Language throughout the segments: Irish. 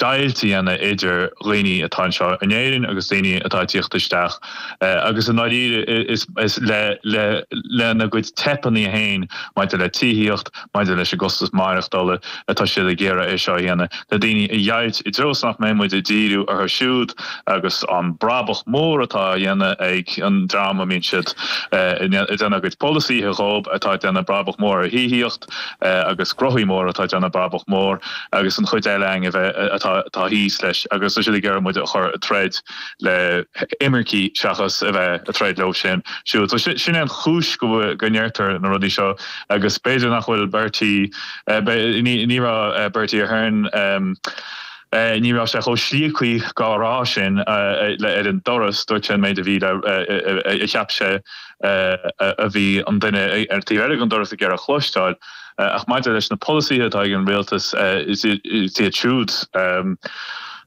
deighilt a dhéanamh idir dhaoine atá anseo in Éirinn agus daoine atá ag teacht isteach agus i ndáiríre lena gcuid teipeanna féin maidir le tithíocht, maidir leis an gcostas maireachtála atá siad ag iarraidh é seo a dhéanamh le daoine a dheighilt i dtreo is nach mbeidh muid ag díriú orthu siúd agus an brabach mór atá á dhéanamh ag an dream a mbíonn siad ag déanamh a gcuid polasaíthe dhób atá ag déanamh brabach mór as tithíocht. agus gnothaí móra atá ag déanamh brabach mór agus an chuid eile againn a bheith atá thíos leis agus tá siad ag iarraidh muid a chur ag troid le himircigh seachas a bheith ag troid leo sin siúd. So sin é an chúis go bhfuil go ndeirtear na rudaí seo agus b'fhéidir nach bhfuil Bertie, ní raibh Bertie Ahern, ní raibh sé chomh slíocaí dhá rá sin ar an doras, dúirt sé an méid a bhí le a cheap sé. a bhí an duine ar an taobh eile den doras ag iarraidh a chloisteáil. Ach maidir leis na polasaithe atá ag an Rialtas, is iad siúd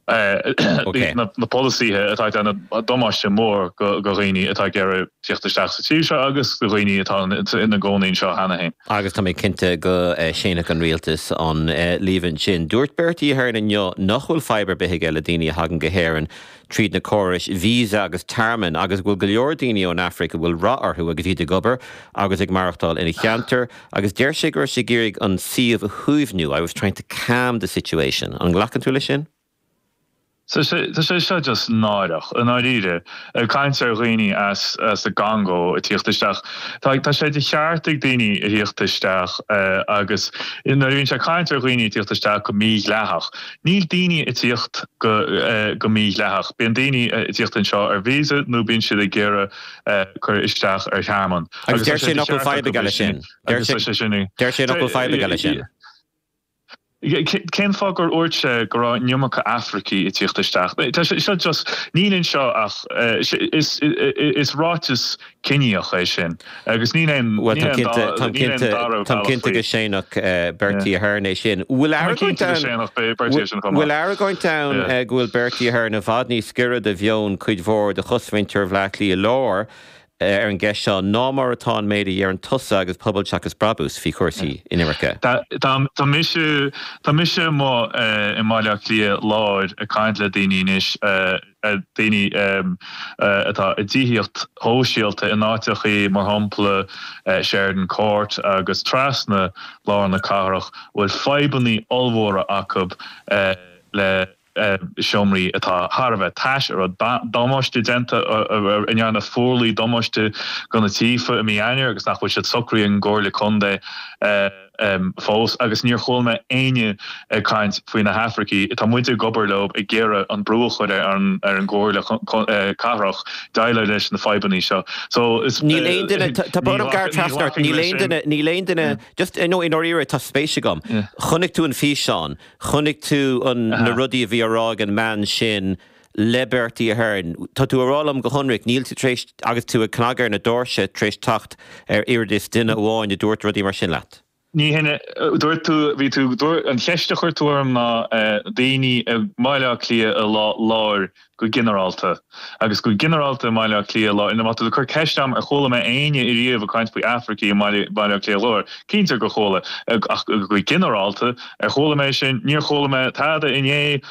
na polasaithe atá ag déanamh damáiste mór do dhaoine atá ag iarraidh tíocht isteach sa tír seo agus do dhaoine atá ina gcónaí anseo cheana féin. Agus tá mé cinnte go séanfadh an Rialtas an líomhain sin. Dúirt Bertie Ahern inniu nach bhfuil fadhb ar bith aige le daoine a thagann go hÉirinn. tríd na córais visa agus tearmainn agus go bhfuil go leor daoine ón Afraic a bhfuil rath orthu agus iad ag obair agus ag maireachtáil ina cheantar agus deir sé go raibh sé ag iarraidh an suíomh a shuaimhniú, I was trying to calm the situation. An nglacann tú leis sin? Tá sé seo just náireach, i ndáiríre. Ag caint ar dhaoine as an gCongó ag tíocht isteach. Tá sé de cheart ag daoine a thíocht isteach agus nuair a bhíonn sé ag caint ar dhaoine ag tíocht isteach go mídhleathach, Níl daoine ag tíocht go mídhleathach. Bíonn daoine ag tíocht anseo ar visa nó bíonn siad ag iarraidh cur isteach ar thearmann. Agus tá sé de cheart acu bheith sin. Agus tá sé sin. Deir sé nach bhfuil fadhb aige le sin. Cén fáth gur dhúirt sé go raibh an iomarca Afracaigh ag tíocht isteach. Tá sé seo just, níl anseo ach, is ráiteas Ciníoch é sin. Agus níl aon Bhuel, táim cinnte, táim cinnte, táim cinnte go séanfadh Bertie Ahern é sin. Bhfuil argóint ann, bhfuil argóint ann go bhfuil Bertie Ahern i bhfad níos giorra do mheon cuid mhór de chosmhuintir Bhleá Cliath Láir ar an gceist seo ná mar atá an méid a dheireann tusa agus Pobal Seachas Brabús faoi chúrsaí inimirce? Tá mise, tá mise i mo, i mBaile Átha Cliath Láir ag caint le daoine anois. daoine atá i dtithíocht shóisialta in áiteachaí mar shampla Sheridan Court agus trasna lár na cathrach a bhfuil fadhbannaí ollmhóra acu le seomraí atá thar a bheith tais, a raibh damáiste déanta, a ndearna fuarlaigh damáiste go na tithe i mí Eanáir agus nach bhfuil siad socraithe ag an gComhairle Contae. fós agus níor chuala mé éinne ag caint faoi na hAfraicigh. Tá muide ag obair leo ag iarraidh an brú a chur ar an gComhairle Cathrach déileáil leis na fadhbannaí seo. So níl aon duine, tá brón orm gearradh trasna ort, níl aon duine, níl aon duine, just i ndáiríre tá spéis agam, chonaic tú an físeán, chonaic tú na rudaí a bhí á rá ag an mbean sin, le Bertie Ahern. Tá tú ag rá liom go hionraic, níl tú tar éis, agus tú ag cnagadh ar na doirse tar éis teacht ar oiread is duine amháin a dúirt rudaí mar sin leat. Ní hin a dúirt tú, bhí tú, an cheist a chuir tú orm ná daoine i mBaile Átha Cliath Láir go ginearálta, agus go ginearálta i mBaile Átha Cliath Láir, má tá tú ag cur ceist orm ar chuala mé éinne ariamh ag caint faoi Afracaigh i mBaile Átha Cliath Láir, cinnte gur chuala, ach go ginearálta ar chuala mé sin, níor chuala mé tada inné,